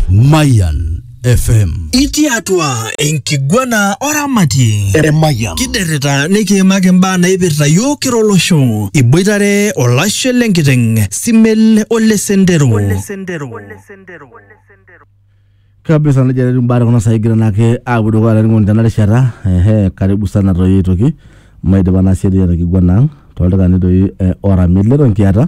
Mayan FM. Itii atua enkiguana oramatie Emayian. kiderrita nikiimaki imbaa naipirta yiok kira olosho iboitare olashe lenkiteng simel ole sendero kabisa nejia etiu imbaa tekuna saai egira naake aapuo dukuya laining'oni tena rishata ehe karibu sana toi aitoki maidipa naa siadi ena kiguana ang toldaikani doi eh, ora mileto nkiata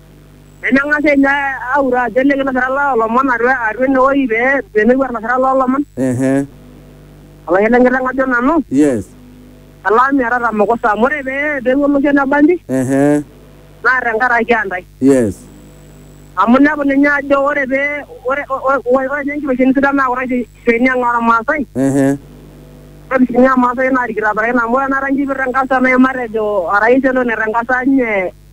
Nemeng'as ninye aure ajo ele kilasirani loo lomon atua atua ene woi pee pemepuo ilasirak loo lomon. Ehe. Olang'et le nkiteng' ajo nanu. Yes. Elang' miatata mukusa amu ore pee peewuo olosho le bangi. Ehe. Naa tenkaraki aa ntae. Yes. Amu inepu ninye ajo ore pee ore ore ore nye nkiteshoni sidan naa kuna kiteshoni ang' ormaasai. Ehe. Ore sii ninye irmaasai naa irkitaparakin amu ore tenakata enkipirta eng'asa nai matejo orais elo netang'asa nye.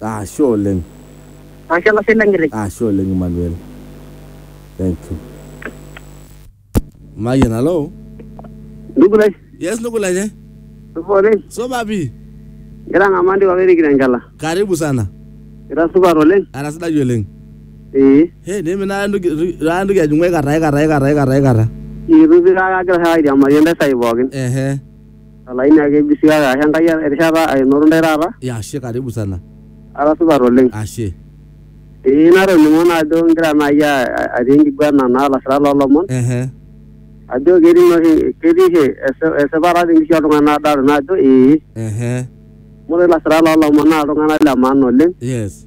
Ashe oleng. Ashe olashe lenkitok. Ashe oleng Emmanuel. Thank you. Mayian, hello. Ndugu lai. Yes, ndugu lai. Eh? Supa oleng. Supa pi. Ngira ng'amaa ndipa pee irikito enkela. Karibu sana. Ira supat oleng. Ara sidai oleng. Ee. He, nimina ndugu ra ndugu ajung'u aikata aikata aikata aikata aikata. Itu pi kake agira airiamari entasai pookin. Ehe. Olaini ake eji sii kake ashe Enkai erishata ainoto ntae taata. Ya ashe karibu sana. Ara supat oleng. Ashe. Ee natoning'o naa ajo igira naai atii enkiguana naa lasirak loo lomon. Ehe. Ajo ketii naa oshi ketii oshi esipata te nkishui oltung'ani naa adolta naa ajo ee. Ehe. Amu ore ilasirak loo lomon naa iltung'anak le maana oleng. Yes.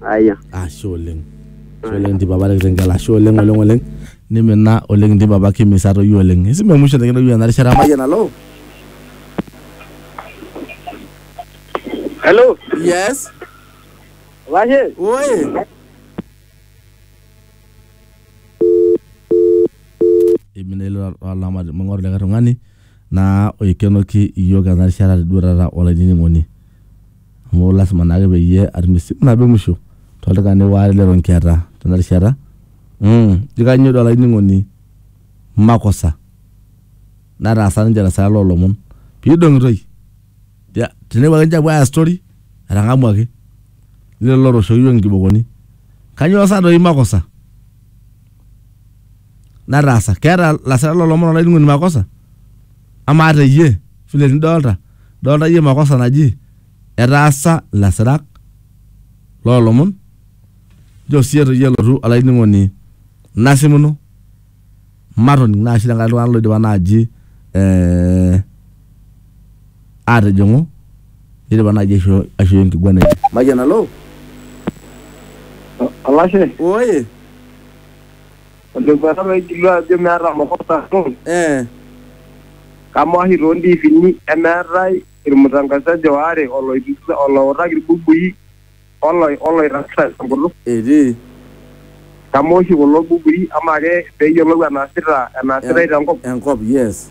Aya. ashe oleng ashe oleng nti papa tenkitengel ashe oleng oleng oleng nimina oleng nti papa kimisa toyio oleng esimu emusho nikintoki ena rishata mayian alo Hello. yes Washe. oye imina ilo olama ming'oru likae tung'ani naa oikenoki iyiook ena rishata duo taata olainining'oni amu lasima naake peyie atum esimu nabo e musho toldaikani waare leton kiata tena rishata. Mmh, ijo kainyoo doi olainining'oni makosa nataasa ninche te saa loo lomon pee idong'itoi? Tenepuo ake ninche aapuo aaya story etang'amuaki lelo lootooshoki iyiook inkibokoni. Kainyoo sa doi makosa? nataasa. Keeta lasira lo lomon olainining'oni makosa? Amaa te iyie vile nidolta, idolta iyie makosa naji etaasa ilasirak loo lomon? Nchoo sii etu iyie elotu olainining'oni nasimuno matoning' naa sii tenkaraki iltung'anak loidipa naaji eh, atijing'u nidipa naaji aishoo aishoi enkiguana enye. Mayian, halo? Olashe, Oye, Olekwetata oigilu ajo meeta makosa amu Eh. kamaa oshi too ntiifini emeetae ilmutangasaji oare oloitukisa, oloutaki ilbukui oloi oloirragita te nkutuk? Etii. Kamaa oshi kulo bukui amaa ake pee eyiolou enaasita enaasitae te nkop? Enkop, yes.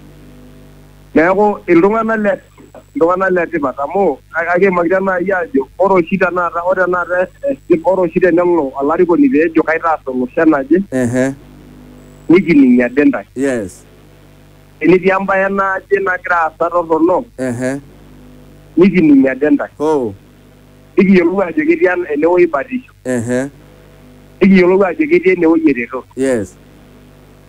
Neaku, iltung'ana le tipat, iltung'ana le tipat amu akiimakita naai aajo ore oshi tenakata, ore tenakata ore oshi tenelo olarikoni pee ejo kaitaas olosho enaje, nikining ade intae. Tenetii embae naje nagira aasa torrono, nikining ade intae. Nikiyiolou aajo ketii enewueji batisho. Nikiyiolou aajo ketii enewueji eretoto.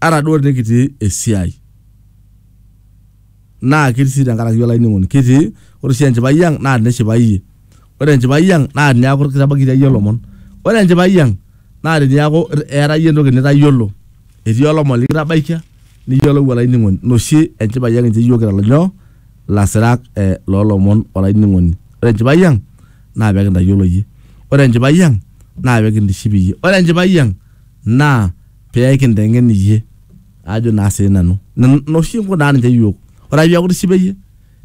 ata duo tenikitii esiai naa ketii sii tenkaraki olainining'oni kitii ore sii enchipai ang naa tinishipai iyie ore enchipai ang naa tiniaku kitabaikitia iyie ilomon ore enchipai ang naa tiniaku eeta iyie entoki nitayiolo etii olomoni likitabaikia niyiolou olainining'oni ina oshi enchipai ang incho iyiook kira nyoo ilasirak eh, loolomon olainining'oni ore enchipai ang naa pekintayiolo iyie ore enchipai ang naa pekintiship iyie ore enchipai ang naa pee kinteng'en iyie ajo naa sii nanu nena oshi inkunaa ninche iyiook ore ake piaku itishipe iyie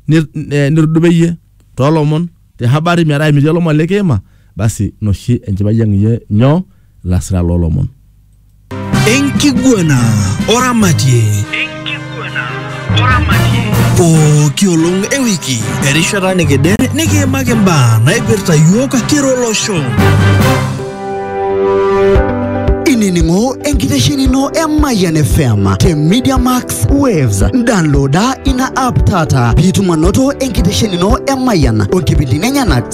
nit- eh, nitudupa iyie toolomon te habari metaa emitii olomoni likiima basi ina oshi enchipai ang iyie nyoo ilasirak loolomon. Enkiguana oramatie. pooki olong e wiki erishata nikidere nikiimaki mbaa naipirta yiok kira olosho inining'o enkitesheni ino e Mayian FM te Media Max Waves. Downloada ina app taata piitum anoto enkitesheni ino e Mayian o nkipindini enyenak